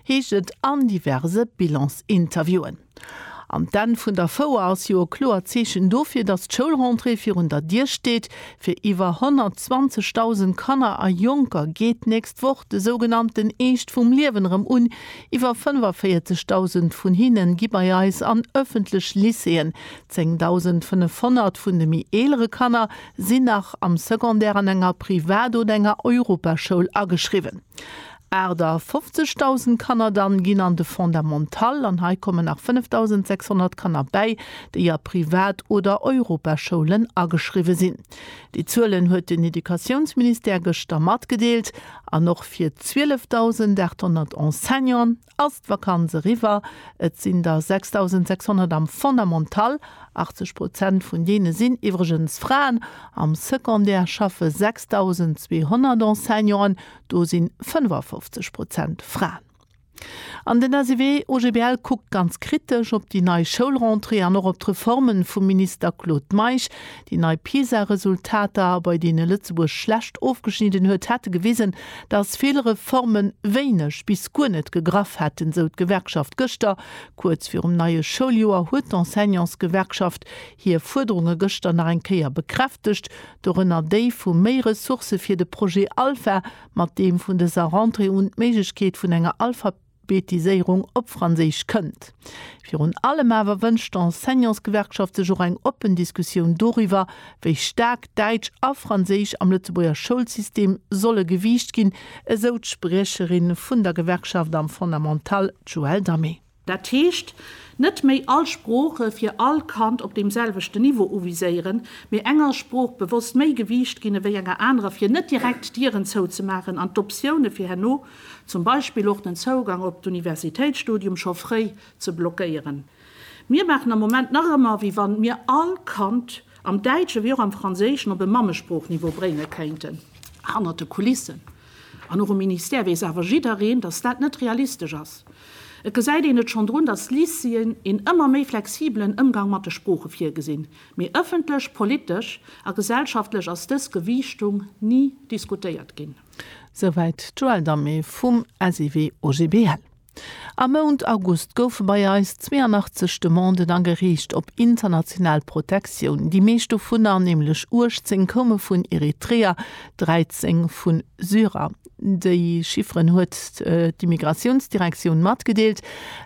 heescht et an diverse Bilansinterviewen. An d'Enn vun der Fouer ass jo e kloert Zeechen dofir, datt d'Schoulrentrée virun der Dier steet. Fir iwwer 120.000 Kanner a Jonker geet d'nächst Woch de sougenannten Eescht vum Liewen erëm un. Iwwer 45.000 vun hinne gi bei eis an ëffentlech Lycéeën. 10.500 vun de méi eelere Kanner sinn nach am Secondaire an enger Privat oder enger Europaschoul ageschriwwen. 58.000 Kanner dann ginn an de Fondamental, an hei kommen nach 5.600 Kanner bäi, déi a Privat oder Europaschoulen ageschriwwe sinn. Déi Zuelen huet den Educatiounsministère gëschter matgedeelt. An och fir 12.800 Enseignanten ass d'Vakanz eriwwer. Et sinn der 6.600 am Fondamental, 80 Prozent vun deene sinn iwwregens Fraen. Am Secondaire schaffe 6.200 Enseignanten, do si 55 Prozent Fraen. An den SEW-OGBL kuckt ganz kritesch op déi nei Schoulrentrée an och op d'Reforme vum Minister Claude Meisch. Déi nei PISA-Resultater, bei deene Lëtzebuerg schlecht ofgeschnidden huet, hätte gewisen, datt vill Reforme wéineg bis guer net gegraff hätten, sou d'Gewerkschaft gëschter. Kuerz virum neie Schouljoer huet d'Enseignantsgewerkschaft hir Fuerderunge gëschter nach eng Kéier bekräftegt, dorënner déi vu méi Ressourcë fir de Projet Alpha, mat deem vun dëser Rentrée un d'Méiglechkeet vun enger Alphabetiséierung op Franséisch kënnt. Virun allem awer wënscht d'Enseignantsgewerkschaft sech och eng oppen Diskussioun doriwwer, wéi staark Däitsch a Franséisch am Lëtzebuerger Schoulsystem solle gewiicht ginn, esou d'Spriecherin vun der Gewerkschaft am Fondamental, d'Joëlle Damé. Dat heescht, net méi all Sprooche fir all Kand op deem selwechten Niveau uviséieren, mee enger Sprooch bewosst méi Gewiicht ginn ewéi enger anerer, fir net direkt d'Dieren zouzemaachen an d'Optioune fir herno, zum Beispill och den Zougang op d'Universitéitsstudium, scho fréi ze blockéieren. Mir maachen am Moment nach ëmmer, wéi wann mir all Kand am Däitschen ewéi och am Franséischen op e Mammesproochniveau bréinge kéinten, hannert de Kulissen. An och um Ministère weess awer jiddereen, datt dat net realistesch ass. Et gesäit een et schonn drun, datt d'Lycéeën een ëmmer méi flexibelen Ëmgang mat de Sprooche virgesinn, mee ëffentlech, politesch a gesellschaftlech ass dës Gewiichtung ni diskutéiert ginn. Souwäit d'Joëlle Dammé vum SIW OGBL. Am Mount August goufe bei eis 82 Demanden agereecht op international Protektioun. Déi meescht dovunner, nämlech 18, koume vun Eritreer, 13 vu Syrer. Déi Chifferen huet d'Immigratiounsdirektioun matgedeelt.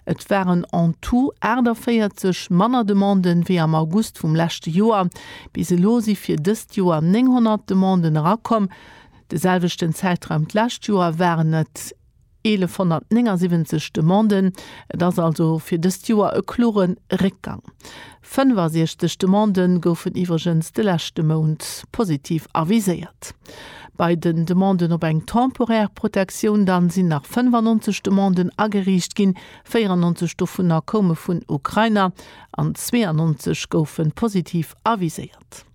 Et waren en tout 48 manner Demanden, wéi am August vum leschte Joer. Bis elo si fir dëst Joer 900 Demanden erakomm. De selwechten Zäitraum d'lescht Joer waren et. 1.179 Demanden, et ass also fir dëst Joer e klore Réckgang. 65 Demandë goufen iwwregens de leschte Mount positiv aviséiert. Bei den Demanden op eng temporär Protektioun dann sinn nach 95 Demanden ageriicht ginn, 94 dovunner koume vun Ukrainer an 92 goufe positiv aviséiert.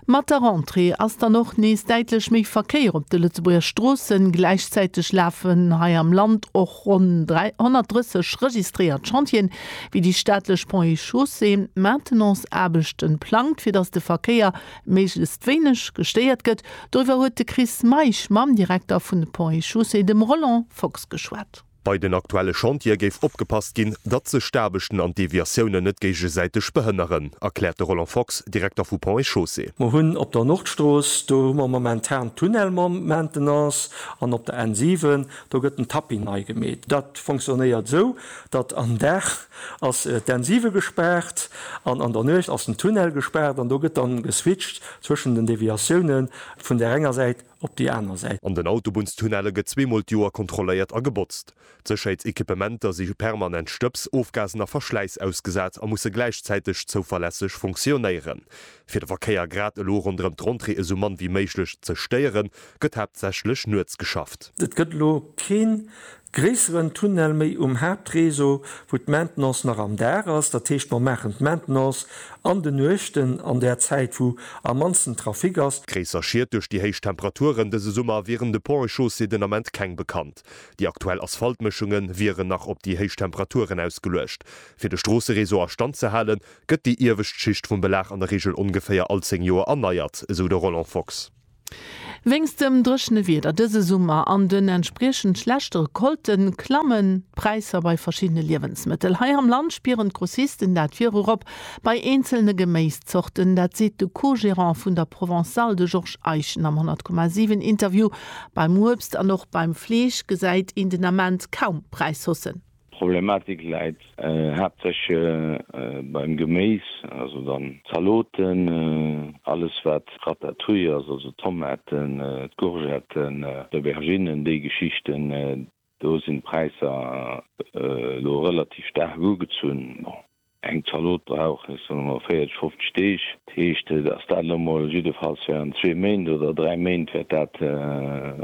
Mat der Rentrée ass dann och nees däitlech méi Verkéier op de Lëtzebuerger Stroossen. Gläichzäiteg lafen hei am Land och ronn 330 registréiert Chantieren, wéi déi staatlech Pont et Chaussée Maintenance-Aarbechten plangt, fir datt de Verkéier méiglechst wéineg gestéiert gëtt. Doriwwer huet de Chris Meisch mam Direkter vun de Ponts et Chaussées, dem Roland Fox, geschwat. Bei den aktuelle Chantiere géif opgepasst ginn, datt sech d'Aarbechten an d'Deviatiounen net géigesäiteg behënneren, erkläert de Roland Fox, Direkter vu Ponts et Chaussées. Mer hunn op der Nordstrooss, do hu mer momentan den Tunnel Maintenance, an op der N7, do gëtt den Tapping nei gemeet. Dat fonctionnéiert esou, datt am Dag ass d'N7 gespaart an an der Nuecht ass den Tunnel gespaart an do gëtt dann geswitcht zwëschen den Deviatioune vun där enger Säit op déi aner Säit. An den Autobunnstunnelle gëtt zweemol d'Joer kontrolléiert a gebotzt. D'Sécherheetsequipementer si permanent Stëbs, Ofgasen a Verschläiss ausgesat a musse gläichzäiteg zouverlässeg funktionéieren. Fir de Verkéier grad elo ronderëm d'Rentrée esou mann wéi méiglech ze stéieren, gëtt haaptsächlech nuets geschafft. Et gëtt elo keen Gréisseren Tunnel méi um Haaptréseau, wou d'Maintenance nach am Dag ass. Dat heescht, mer maachen d'Maintenance an de Nuechten, an där Zäit, wou am mannsten Trafic ass. Gréisser Schied duerch déi héich Temperaturen dëse Summer wieren de Ponts et Chaussées den Ament keng bekannt. Déi aktuell Asphaltmëschunge wieren nach op déi héich Temperaturen ausgeluecht. Fir de Stroosseréseau a Stand ze halen, gëtt déi iewescht Schicht vum Belag an der Reegel ongeféier all 10 Joer erneiert, esou de Roland Fox. Wéinst dem dréchene Wieder dëse Summer an den entspriechend schlechte Recolte klammen d'Präisser bei verschiddene Liewensmëttel. Hei am Land spieren d'Grossisten dat virop bei eenzelne Geméiszorten. Dat seet de Co-Gerant vun der Provençale, de Georges Eischen am 100,7 Interview. Beim Uebst an och beim Fleesch gesäit een den Ament kaum Präishaussen. D'Problematik läit haaptsächlech beim Geméis, also dann d'Zaloten, alles wat Ratatouille ass, also d'Tomaten, d'Courgetten, d'Auberginnen, déi Geschichten. Do sinn d'Präisser elo relativ staark ugezunn. Eng Zalot brauch, ech soen emol, 40, 50 Deeg. Dat heescht, dass dat elo mol jiddefalls während zwee Méint oder dräi Méint wäert dat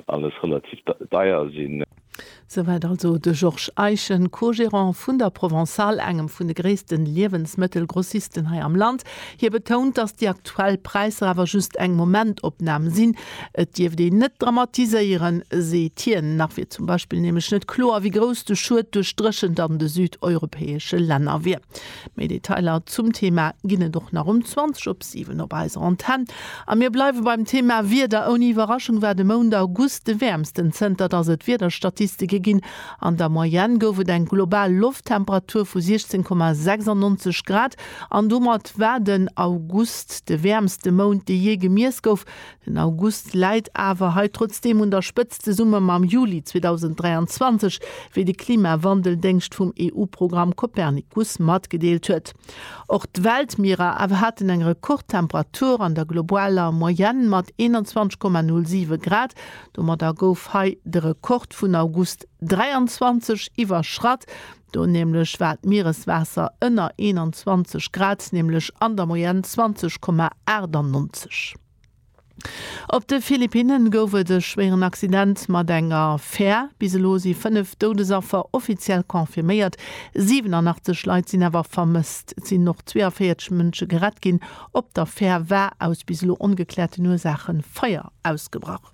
alles relativ deier sinn. Souwäit also de Georges Eischen, Co-Gerant vun der Provençale, engem vun de gréisste Liewensmëttelgrossisten hei am Land. Hie betount, dass déi aktuell Präisser awer just eng Momentopnam sinn. Et dierft een net dramatiséieren, seet hien. Nach wier zum Beispill nämlech net kloer, wéi grouss de Schued duerch d'Dréchent an de südeuropäesche Länner wier. Méi Detailer zum Thema ginn et och nach um 20 op 7 op eiser Antenn. A mir bleiwe beim Thema Wieder. Ouni Iwwerraschung war de Mount August de wäermsten, zënter datt et Wiederstatistike ginn. An der Moyenne gouf et eng global Lofttemperatur vu 16,96 Grad an domat war den August de wäermste Mount, dee jee gemiess gouf. Den August läit awer hei trotzdeem un der Spëtzt, zesumme mam Juli 2023, wéi de Klimawandel-Déngscht vum EU-Programm Copernicus matgedeelt huet. Och d'Weltmierer awer haten eng Rekordtemperatur an der globaler Moyenne mat 21,07 Grad. Domadder gouf hei de Rekord vun August 23 iwwerschratt. Do nämlech war d'Miereswaasser ënner 21 Grad, nämlech an der Moyenne 20,98. Op de Philippinne gouf et e schwéieren Accident mat enger Fär. Bis elo si 5 Doudesaffer offiziell confirméiert, 87 Leit sinn awer vermësst. Et sinn och 42 Mënsche gerett ginn. Op der Fär war aus bis elo ongekläerten Ursaache Feier ausgebrach.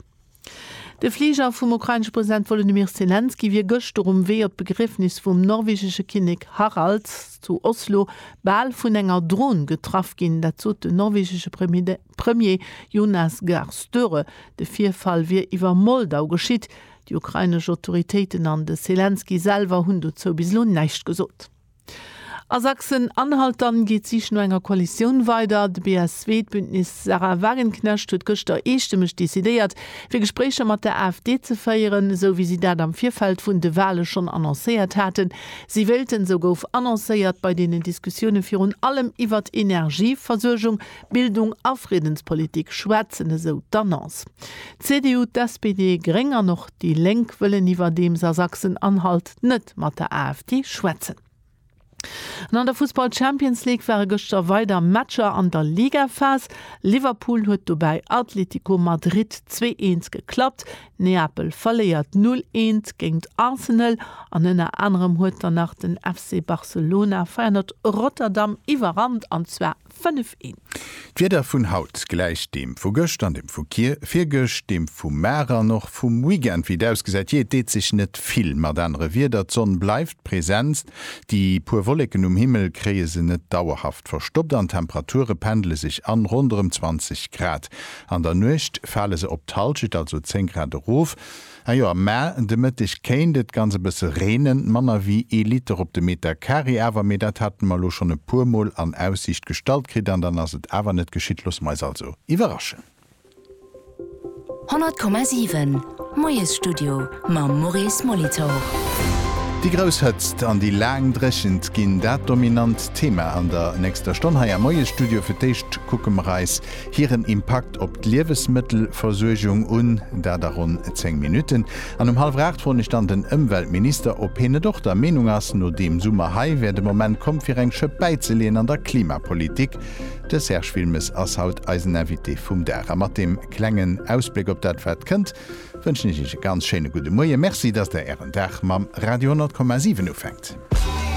De Fliger vum ukrainesche President Wolodymyr Selenskyj wier gëschter um Wee op d'Begriefnis vum norwegesche Kinnek Harald zu Oslo bal vun enger Dron getraff ginn. Dat sot den norwegesche Premier Jonas Gahr Støre. De Virfall wier iwwer Moldau geschitt. Déi ukrainesch Autoritéiten an de Selenskyj selwer hunn dozou bis elo näischt gesot. A Sachsen-Anhalt dann geet d'Sich no enger Koalitioun weider. De BSW, d'Bündnis Sarah Wagenknecht, huet gëschter eestëmmeg decidéiert, fir Gespréicher mat der AfD ze féieren, esou wéi si dat am Virfeld vun de Wale schonn annoncéiert haten. Si wéilten, esou gouf annoncéiert, bei deenen Diskussioune virun allem iwwert Energieversuergung, Bildung a Friddenspolitik schwätzen, esou d'Annonce. D'CDU, d'SPD, Gréng an och déi Lénk wëllen iwwerdeems a Sachsen-Anhalt net mat der AfD schwätzen. An an der Fussball-Champions League ware gëschter weider Matcher an der Ligaphas. Liverpool huet dobäi Atletico Madrid zwee eens geklappt, Neapel verléiert null eens géingt Arsenal an ënner anerem huet dann nach den FC Barcelona Feyenoord Rotterdam iwwerrannt, an zwar. 5 een. D'Wieder vun haut gläicht deem vu gëscht an dem vu vir, virgëscht deem vu mar an och vum Weekend. Wéi et ausgesäit, jee, et deet sech net vill mat anere Wieder. D'Sonn bleift presenst, déi puer Wolleken um Himmel kréie se net dauerhaft verstoppt an d'Temperature pendele sech an ronderëm 20 Grad. An der Nuecht fale se op d'Hallschent, also 10 Grad erof. Najo, mä de Mëtteg kéint et ganz e bësse reenen, manner wéi ee Liter op de Meter Carré awer, mee dat hate mer elo schonn e puermol an Aussiicht gestallt kritt an dann ass et awer net geschitt. Loosse mer eis also iwwerraschen. 100,7, Moiesstudio mam Maurice Molitor. Déi grouss Hëtzt an déi laang Dréchent ginn dat dominant Thema an der nächster Stonn hei am Moiesstudio. Fir d'éischt kucke mer eis hiren Impakt op d'Liewesmëttelversuergung un, dat a ronn 10 Minutten, an um hallwer 8 froen ech dann den Ëmweltminister, ob hien net och der Meenung ass, no deem Summer hei wär de Moment komm fir eng Schëpp bäizeleeën an der Klimapolitik. De Serge Wilmes ass haut eisen Invité vum Dag. A mat deem klengen Ausbléck op dat wat kënnt, wënschen ech Iech e ganz schéine gudde Moie. Merci, datt Der Ären Dag mam Radio 10,7 ufänkt.